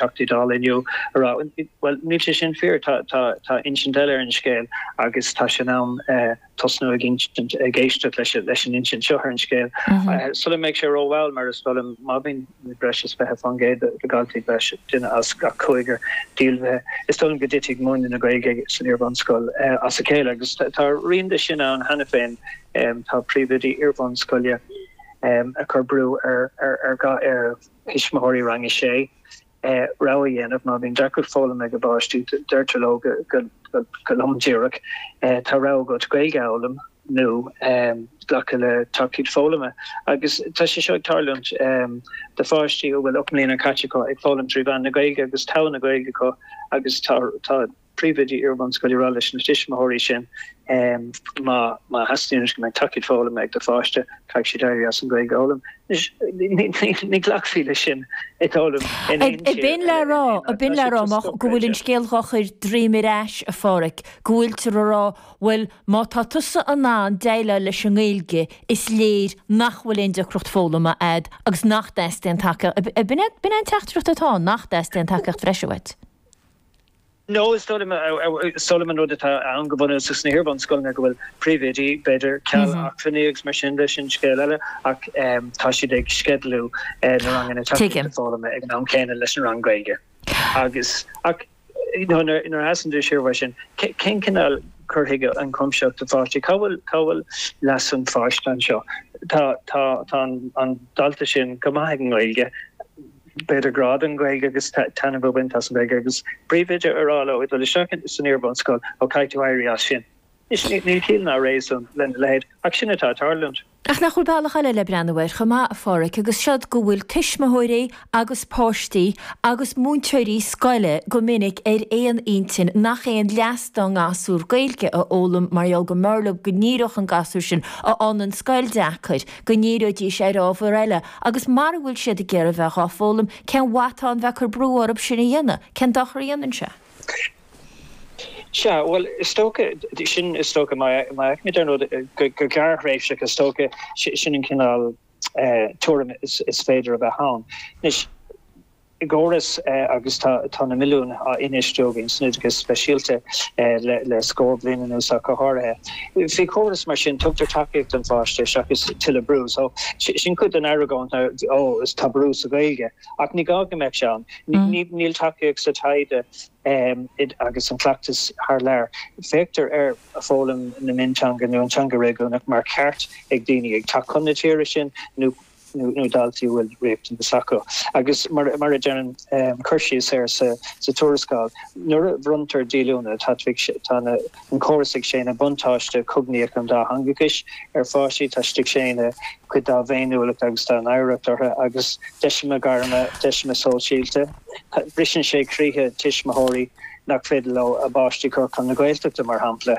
Teachtaí Dála inniu a rá, bhuel, níl sé sin fíor, tá insint eile ar an scéal agus tá sé in am tosnú ag insint, ag éisteacht leis an insint seo ar an scéal sula mbeidh sé rómhall mar is dóigh liom má bhíonn breis is 20% de dhaltaí, breis is duine as gach cúigear, díolmhaithe, is dóigh liom go dtitfidh múineadh na Gaeilge san iarbhunscoil as a chéile agus tá rian de sin ann cheana féin, tá príomhoidí iarbhunscoile ag cur brú ar gach. Tuismitheoirí Rang 6, Rogha a dhéanamh, Má bhíonn deacracht foghlama ag a bpáistí, deirtear leo go lom díreach, Tá rogha agat Gaeilge a fhoghlaim nó glacadh le tacaíocht foghlama. Agus tá sé seo ag tarlúint do pháistí a bhfuil 8 mbliana caite acu ag foghlaim trí mheán na Gaeilge agus togha na Gaeilge acu agus tá. príomhoidí iarbhunscoile a rá leis na tuismitheoirí sin má theastaíonn go mbeidh tacaíocht foghlama ag do pháiste, caithfidh siad éirí as an Ghaeilge a fhoghlaim. Anois, ní ghlacfaí leis sin is dóigh liom in aon tír eile. Ab in le rá go bhfuil an scéal dhá chur droim ar ais, a Phádraic, go bhfuiltear a rá, bhuel má tá tusa in ann déileáil leis an nGaeilge is léir nach bhfuil aon deacracht foghlama agat agus nach dteastaíonn tacaíocht, ab in é an teachtaireacht atá ann, nach dteastaíonn tacaíocht bhreise uait. No, is dóigh, is dóigh liom, an rud atá ann go bunúsach sna hiarbhunscoileanna go bhfuil príomhoidí, b'fhéidir, ceal acmhainní agus mar sin de, sin scéal eile, ach tá siad ag sceidealú na ranganna tacaíochta foghlama ag an am céanna leis an rang Gaeilge. Agus ach, you know, nuair nuair a sheasann tú siar uaidh sin, cén cineál cur chuige ionchuimsitheach do pháistí? Cá bhfuil cá bhfuil leas an pháiste anseo? Tá tá tá an an dalta sin go maith ag an nGaeilge. b'fhéidir grá don Ghaeilge agus taitneamh a bhaint as an Ghaeilge agus an príomhoide a rá leo ag dul isteach san iarbhunscoil ó caithfidh tú éirí as sin. Níl ciall ná réasún lena leithéid ach sin atá ag tarlúint. Ach nach bhfuil bealach eile le breathnú air chomh maith, a Phádraig, agus siod go bhfuil tuismitheoirí agus páistí agus múinteoirí scoile go minic ar aon intinn nach aon leas dá ngasúr Gaeilge a fhoghlaim mar gheall go mb'fhearr leo go ndíreodh an gasúr sin a fhaigheann scoil deacair, go ndíreoidís ar ábhar eile Agus mara bhfuil siad ag iarraidh bheith dhá foghlaim, cén mhaith atá ann bheith ag cur brú orthub sin a dhéanamh? Cén dochar a dhéanann sé? Sea, bhuel, is dócha, sin, is dócha, má fheicimid ar ndóigh go gearrthréimhseach, is dócha, sin an cineál tuairim is féidir a bheith ann. Anois. i gcóras agus tá na milliúin á infheistiú againn san oideachas speisialta le scór bliain anuas ach go háirithe. Faoi chóras mar sin tugtar tacaíocht don pháiste seachas tuilleadh brú so sin cuid den argóint ná ó tá brú sa Ghaeilge ach ní gá go mbeadh sé ann. Níl tacaíocht sa taighde agus an cleachtas thar lear. Féachtar ar fhoghlaim na mionteanga nó an teanga réigiúnach mar cheart ag daoine ag teacht chun na tíre sin nó. nó daltaí a bhfuil riachtanas acu. Agus mar a deineann an cur síos air sa tuarascáil, nuair a bhronntar díolúine tá an córas ag séanadh buntáiste cognaíoch an dátheangachais ar pháistí táthar ag séanadh cuid dá bhféiniúlacht agus dá n-oidhreacht orthu agus deiseanna gairme, deiseanna sóisialta. Briseann sé croíthe tuismitheoirí nach féidir leo a bpáistí cur chun na Gaeltachta, mar shampla.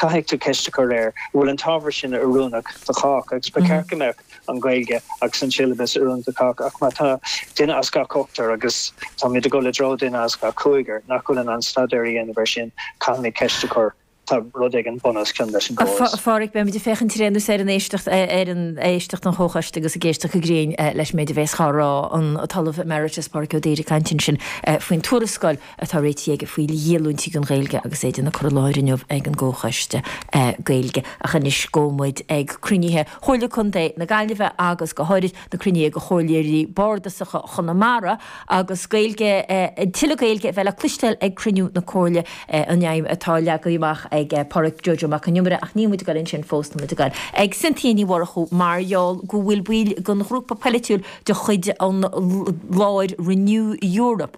Caithfidh tú ceist a chur ar an bhfuil an t-ábhar sin oiriúnach do chách agus ba cheart go mbeadh an Ghaeilge agus an siollabas oiriúnach do chách ach má tá duine as gach ochtar agus táimid ag dul i dtreo duine as gach cúigear nach bhfuil in ann staidéar a dhéanamh air sin caithfimid ceist a chur. Tá rud éigin bun os cionn leis an gcóras. Beimid ag féachaint tar éis ar an éisteacht, ar an éisteacht don Chomhchoiste agus ag éisteacht go grinn leis an méid a bheas le rá an tOllamh Emeritus Pádraic Ó Duibhir ag caint ansin faoin tuarascáil. atá réitithe aige faoi dhíolúintí don Ghaeilge agus é dhá cur i láthair inniu ag an gComhchoiste Gaeilge. Ach anois gabhfaidh muid ag cruinnithe Chomhairle Contae na Gaillimhe agus go háirid na cruinnithe ag Chomhairleoirí Bhardasacha Chonamara agus Gaeilge, tuilleadh Gaeilge a bheith le cloisteáil ag cruinniú na Comhairle an aidhm atá leagtha amach ag Pádraig Joe Joe Mac an Iomaire ach níl muid ag dul ansin fós, tá muid ag dul ag Cynthia Ní Mhurchú mar gheall go bhfuil baill den ghrúpa poilitiúil de chuid an láir Renew Europe.